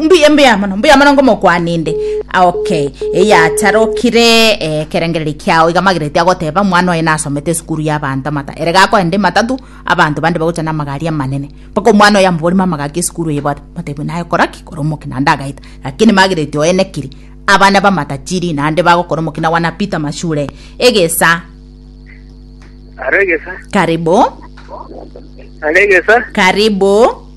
Mbuya mbuya mono mbuya mono ngomokwani inde okay eyacharokire eh, ekerengereri kiao iga magereti agoteba mwana oye nasomete esukuru ya abanto amata ere gakoenda ematatu abanto bande bagocha na amagari amanene mpaka omwana oye amoborima amagaki esukuru eye bwate batebwa naye koraki kore omoki naende agaita lakini magereti oye nekiri abana bamatachiri naende bagokora omoki na wanapita mashure egesa Aregesa. karibu Aregesa. karibu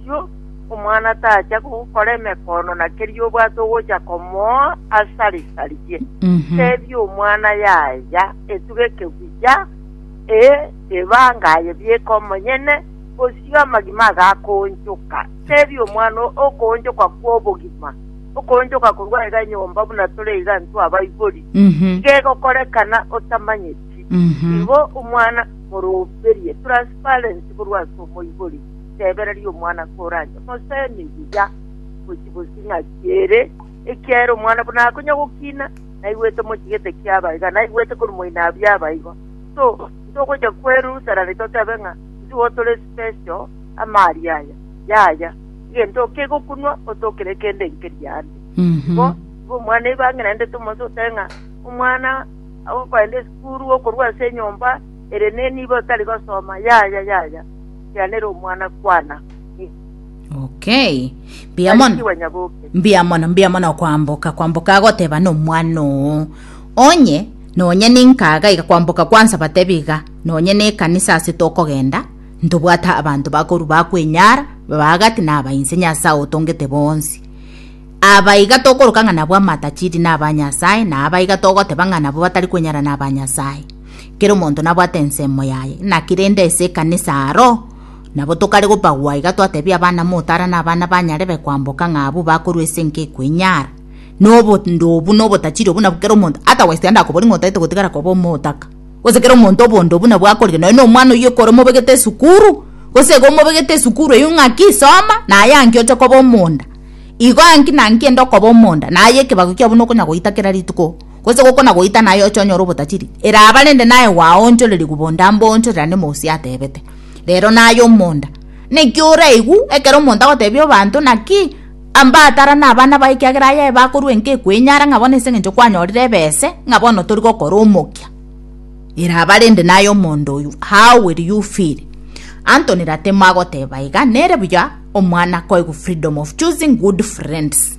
Erio omwana tacha gokora emekono na keria obwate ogocha komoa asare sarigie. Teebia omwana yaya etuga ekeguya, ee, ebanga aye bieka omonyene, bosio amagima agakoonchoka. Teebia omwana okoonchoka kw'obogima, okoonchoka korwa aiga nyomba buna tore iga intwe abaibori, iga egokorekana otamanyeti. Igo omwana moroberie, transparency korwa ase omoibori. Tebereria omwana koranche mosemi buya gochia bosio ng'aki ere, ekiagera omwana buna akonya gokina, naigwete mochigete kiaba iga, naigwete korwa moinabu yaba igo. So, ntogochia kwerusarani totebe ng'a ntigo tore special amaari aya. Yaya, egento oke iga okonwa, otokere kende nkeria ande. Igo, igo omwana igo ang'erendete omonsi otebe ng'a omwana ogoenda esukuru, okorwa ase enyomba, ere nenibo tari gosoma, yaya, yaya. Tianera omwana kwana. Okay. Mbuya mono. Barikiwe nyaboke. Mbuya mono, mbuya mono okwamboka, kwamboka agoteba nomwana oo. Onye nonye ninkaga iga kwamboka kwansa batebi iga nonye nekanisa ase tokogenda ntobwata abanto bakoru bakwenyara babagati nabainse nyasaye otongete bonsi aba iga tokoroka ng'a nabwo amatachiri na abanyasaye na aba iga togoteba ng'a nabo batari kwenyara na abanyasaye Kera omonto nabwate ensemo yaye. Naki rende ase ekanisa aro nabo tokare gopagwa iga twatebia abana motara na abana banyarebe kwamboka ng'a abwo bakorwa ase enka ekoinyara. Nobondo obu na obotachiri obu nabwo kera omonto ata west ande akobori ng'a otaete gotigara koba omotaka. Gose kera omonto obondo obu nabwo akorire nonya na omwana oyio ekero omobegete esukuru gose iga omobegete esukuru eyio ng'aki soma naye anki oche koba omonda. Igo anki na anki enda okoba omonda naye ekebago kiabo nokonya goita kera rituko. gose gokona-goita naye oche onyore obotachiri, eraba rende naye gwaonchorerigwe bonda mboonchorera nemosia atebete, Rero naye omonda. Naki oraigwe ekero omonto agotebia obanto, Naki amba atara nabana baye ekiagera aye bakorua enka ekwenyara ng'a bono as'engencho kwanyorire ebese ng'a bono tori gokora omokia. Eraba rende naye omonda oyo, How will you feel? Anthony Ratemo agoteba iga, Nere buya omwana koigwa freedom of choosing good friends.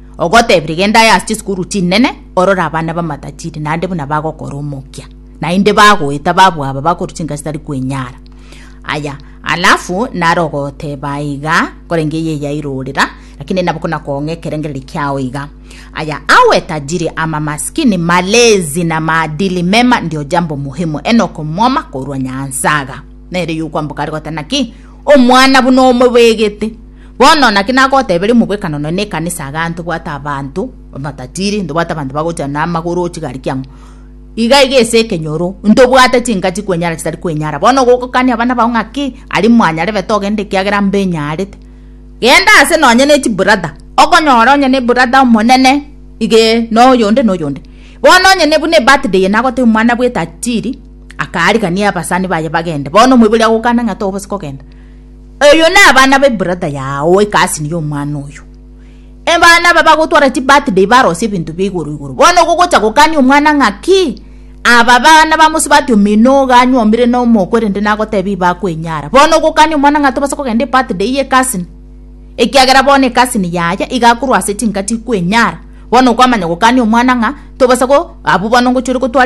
Ogotebire genda aye ase chisukuru chinene orore abana b'amatajiri naende buna bagokora omokia, naende bagoeta babu aba bakorwa chinka chitari kwenyara. Aya, alafu naro ogoteba iga, korende eye yairorera, lakini nabo kona koong'a ekerengererio kiao iga. Aya, awe tajiri ama masikini, malezi na maadili mema ndio jambo muhimu, enoka omwoma korwa Nyansaga. Nere yokwamboka are goteba naki? Omwana buna omobegete. Bono naki nagoteberia omobwekano nonya na ekanisa igaa ntobwate abanto amatatiri, ntobwate abanto bagocha na amagoro oo chigari kiang'o. Iga iga ase ekenyoro, ntobwate chinka chikwenyara chitari kwenyara. Bono gokokania abana bao ng'aki, aria mwanyarebete togenda ekiagera mbenyarete. Genda ase nonya ne chibrother, okonyora onye ne ebrother omonene igee noyonde noyonde. Bono onye ne buna ebirthday eye nagotebia omwana bw'etatiri. akaarigania abasani baye bagende. Bono omoibori agokana ng'a tobose kogenda. Eyo na abana be brother yao oe cousin ya omwana oyo. Ebana aba bagotwara chi birthday barosie ebinto bia igoro igoro. Bono gogocha gokania omwana ng'a ki? Aba abana ba mosubati omino iga anywomire na omoko erinde nagotebia iba akwenyara. Bono ogokania omwana ng'a tobasa kogenda ebirthday ye cousin ekiagera bono ecousin yaye iga akorwa ase chinka chikwenyara. Bono okwamanya gokania omwana ng'a tobasa go abwo bono ngochia ore gotwara.